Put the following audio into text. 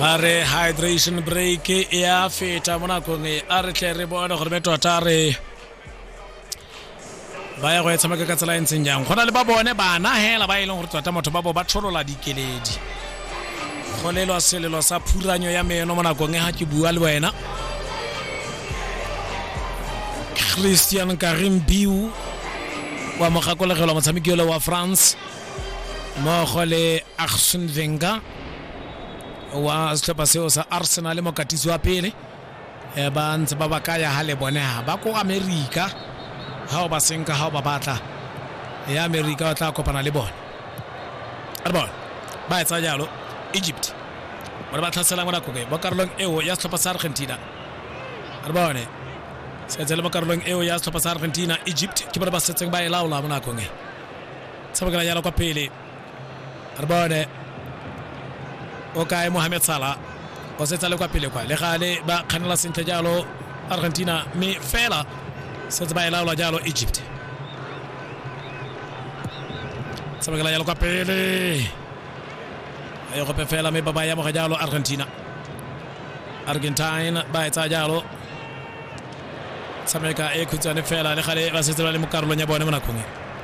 ba re hydration break e a feta mo nakong e a re tle re bone gore be tota re ba ya go e tshameka ka tsela e ntseng jang go na le ba bone bana hela ba e leng gore tota motho ba bo ba tsholola dikeledi go lelwa selelo sa phuranyo ya meno mo nakong e ga ke bua le wena christian karim biu wa mogakolegelwa motshameki ole wa france mmogo le arsen venga wa setlhopha seo sa arsenal mokatisi wa pele Eh, ba ntse ba ba kaya ha le bone ha ba ko america ha o ba senka ha o ba batla ya america o tla kopana le bone a re bone ba etsa jalo egypt bone ba tlhaselang mo nakobe mo karolong eo ya setlhopha sa argentina a re bone setse le mo karolong eo ya setlhopha sa argentina egypt ke bone ba setseng ba e laola mo nakong e tshamekela jalo kwa pele re bone o kae mohamed sala o setsa le kwa pele kwa le gale ba kganela sentle jalo argentina mme fela setse ba e laola jalo egypt tshamekela jalo kwa pele a ye gope fela mme ba ba yamoga jalo argentina argentine ba e tsaya jalo tshameka e khutshwane fela le gale ba setse ba le mo karolong ya bone mo nakong e